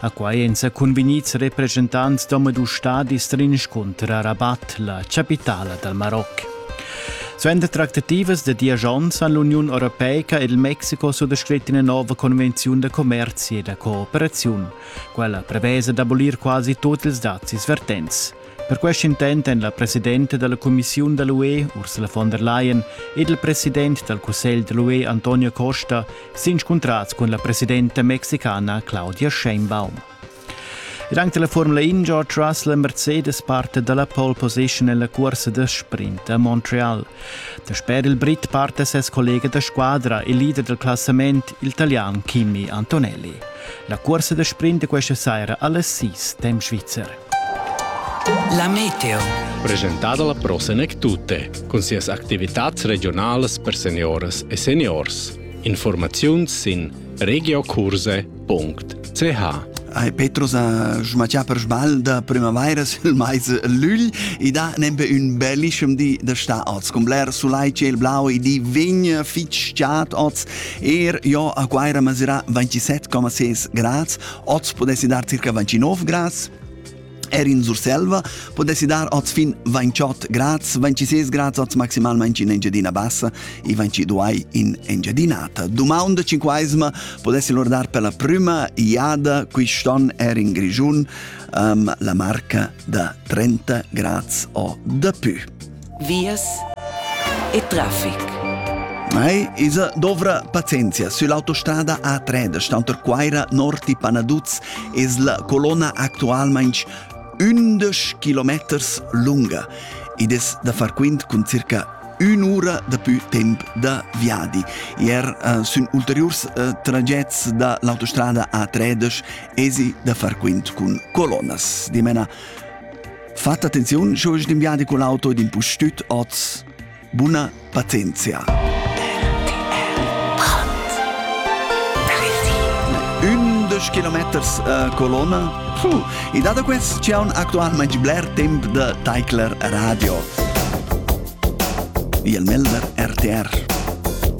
A quai èn sa cunvegnids represchentants d'omadus stadis s'inscuntra a Rabat, la chapitala dal Maroc. Suenter tractativas da diesch onns han l'Uniun Europeica ed il Mexico suttascrit ina nova convenziun da commerzi e da cooperaziun. Quella prevesa d'abolir quasi tut ils dazis vertents. Per quest intent èn la presidenta dalla cumissiun da l'UE Ursula von der Leyen ed il president dal cussegl da l'UE Antonio Costa s'inscuntrads cun la presidenta mexicana Claudia Sheinbaum. Ed anche la Formula In George Russell e Mercedes parte dalla pole position nella corsa da sprint a Montreal. Dasper il Brit parte ses collega da squadra e leader del classament, il italian Kimi Antonelli. La corsa da sprint di questa sera alle 6 temp svizzer. La meteo. Presentada la Pro Senec Tutte cun sias activitats regionalas per senioras e seniors. Informaziuns sin regiocurse.ch Ai Petros a Jumatià per sbal da primavaira sil mais lügl e da nempe ün bellischem di da sta oz. Con bler sulai ciel blau e di vegn fitg chat oz. Er jo a Quaira masirà 27,6 grads Oz podessi dar circa 29 grads, Er in Surselva podessi dar oz fin 28 grads, 26 grads oz maximalmente in Engiadina Bassa e 22 in Engiadinata. Dumang de cinquaesma podessi lor dar per la prima iada quist'on er in Grigiun um, la marca da 30 grads o de più. vias e traffic. Mai isa dovra pazienzia sull'autostada A3 da Stanterquaira Norti Panaduz es la colonna actualmaing ündesch kilometers lunga. Id es da far quint cun circa ün'ura dapü temp da viadi. Ier uh, sun ulteriurs uh, tragets da l'autostrada A13 esi da far quint cun colonnas. Dimena Fat attenziun, sche ins viadi con l'auto ed impustüt oz. Buna pazienzia. Ündesch kilometers uh, colonna. Puh. E dado quest c'è un actualmente bler temp de Teichler Radio. Il Melder RTR.